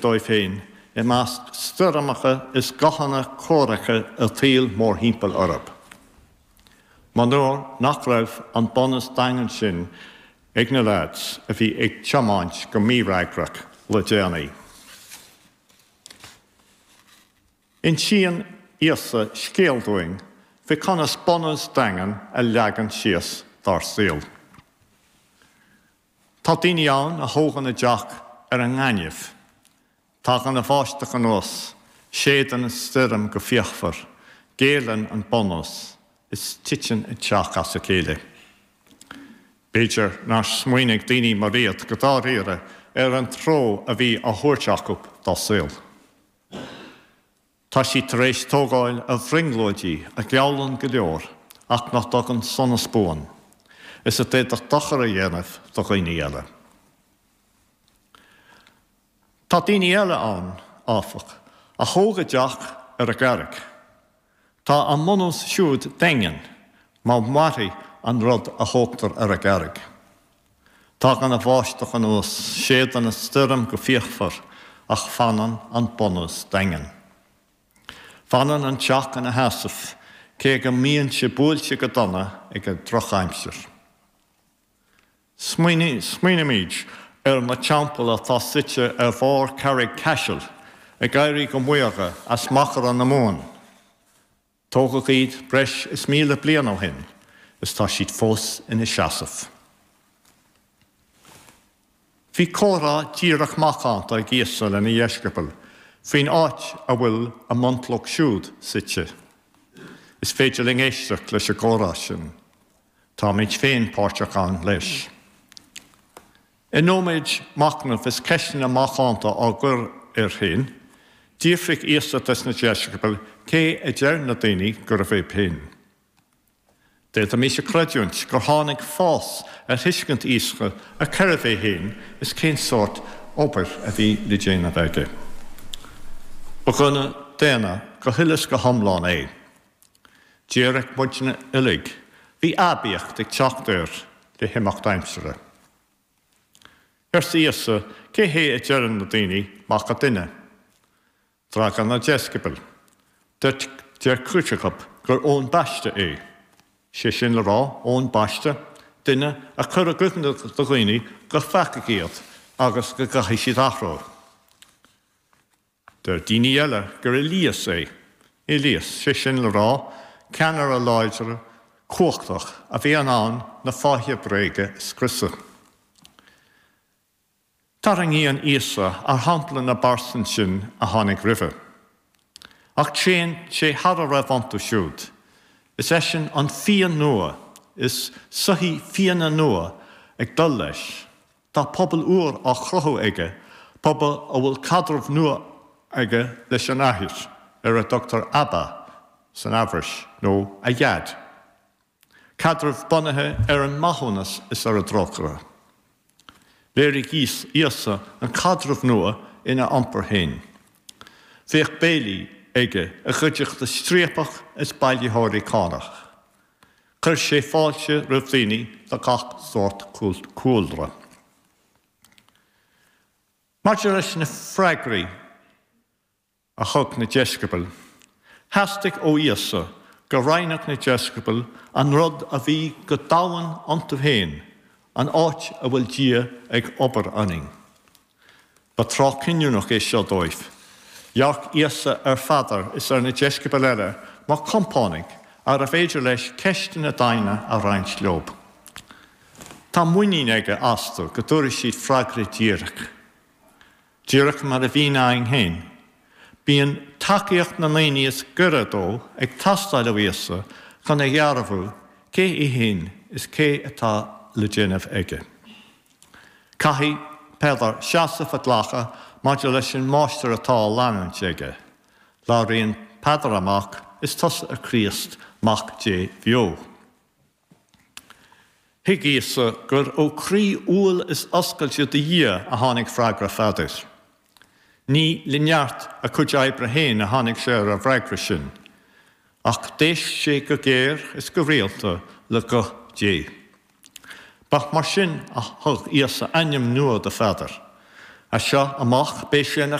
dóibh féin i measc stoirmeacha is guthanna comhraic a saoil mórthimpeall orthu. Monuar nach raibh an bunús daingean sin ag na leaids a bhí ag tiomáint go mífhreagrach le déanaí. Insíonn Íosa scéal dúinn faoi conas bunús daingean a leagan síos dár saol. Tá daoine ann a thógann a dteach ar an ngaineamh. Tagann an bháisteach anuas, séideann an stoirm go fíochmhar, géilleann an bunús, is titeann an teach as a chéile. B'fhéidir nár smaoinigh daoine mar iad go dáiríre ar an treo a bhí á thabhairt acu dá saol. Tá siad tar éis tógáil ar bhrionglóidí a gheallann go leor ach nach dtugann sonas buan, is a d'fhéadfadh dochar a dhéanamh do dhaoine eile. Tá daoine eile ann, áfach, a thóg a dteach ar an gcarraig. Tá a mbunús siúd daingean, mar mairfidh an rud a thógtar ar an gcarraig. Tagann an bháisteach anuas, séideann an stoirm go fíochmhar, ach fanann an bunús daingean. Fanann an teach ina sheasamh, cé go mbíonn sé buailte go dona ag an drochaimsir. Smaoinímid ar na teampaill atá suite ar bharr Charraig Chaisil, ag éirí go maorga as machaire na Mumhan. Tógadh iad breis is míle bliain ó shin is tá siad fós ina seasamh. Bhí comhrá díreach macánta ag Íosa lena dheisceabail faoin áit a bhfuil a mbunchloch siúd suite. Is féidir linn éisteacht leis an gcomhrá sin. Táimid féin páirteach ann leis. I nóiméad machnaimh is ceisteanna macánta á gcur air féin, d'fhiafraigh Íosa de na deisceabail cé a deir na daoine gurbh é féin. D'fhéadfaimis a chreidiúint gur tháinig fás ar thuiscint Íosa ar cérbh é féin is cén sórt obair a bhí le déanamh aige. Ba dhuine daonna go huile is go hiomlán é. Dearadh muidne uilig, bhí aibíocht ag teacht air le himeacht aimsire. Arsa Íosa, Cé hé a deireann na daoine Mac an Duine? D'fhreagair na deisceabail, Deir cuid acu gur Eoin Baiste é, sé sin le rá, Eoin Baiste, duine a chuir i gcuimhne do dhaoine gur pheacaigh iad agus go gcaithfidh siad athrú. Deir daoine eile gur Éilias é, Éilias, sé sin le rá, ceannaire láidir cumhachtach a bhí in ann na fáithe bréige a scriosadh. Tarraingíonn Íosa ar shampla na bpearsan sin a tháinig roimhe. Ach téann sé thar a raibh iontu siúd. Is eisean an fíon nua, is soithí fíona nua atá ag dul leis. Tá pobal úr á chruthú aige, pobal a bhfuil caidreamh nua aige leis an athair, ar a dtugtar Abba san Eabhrais, nó a Dhaid. Caidreamh bunaithe ar an maithiúnas is ar an dtrócaire. Léirigh Íosa an caidreamh nua ina iompar féin. Bhíodh béilí aige i gcuideachta striapach is bailitheoirí cánach. Chuir sé fáilte roimh dhaoine de gach sórt cúlra. Maidir leis na freagraí a thug na deisceabail, theastaigh ó Íosa go roinnfeadh na deisceabail an rud a bhí go domhain iontu féin, an áit a bhfuil Dia ag obair ionainn. Ba tráth cinniúnach é seo dóibh. Dhearc Íosa ar Pheadar is ar na deisceabail eile mar chompánaigh arbh fhéidir leis ceisteanna doimhne a roinnt leo. Tá muinín aige astu go dtabharfaidh siad freagra díreach. Díreach mar a bhíonn againn féin, bíonn tacaíocht na ndaoine is gaire dó ag teastáil ó Íosa chun a dhearbhú cé é féin is céard atá le déanamh aige. Caithfidh Peadar seasamh a ghlacadh maidir leis an Máistir atá á leanúint aige. Labhraíonn Peadar amach, Is tusa an Críost, Mac Dé bheo. Thuig Íosa gur ó chroí umhal is oscailte do Dhia a tháinig freagra Pheadair. Ní le neart a chuid oibre féin a tháinig sé ar an bhfreagra sin, ach d'éist sé go géar is go rialta le guth Dé. Ba mar sin a thug Íosa ainm nua do Pheadar, As seo amach beidh sé ina.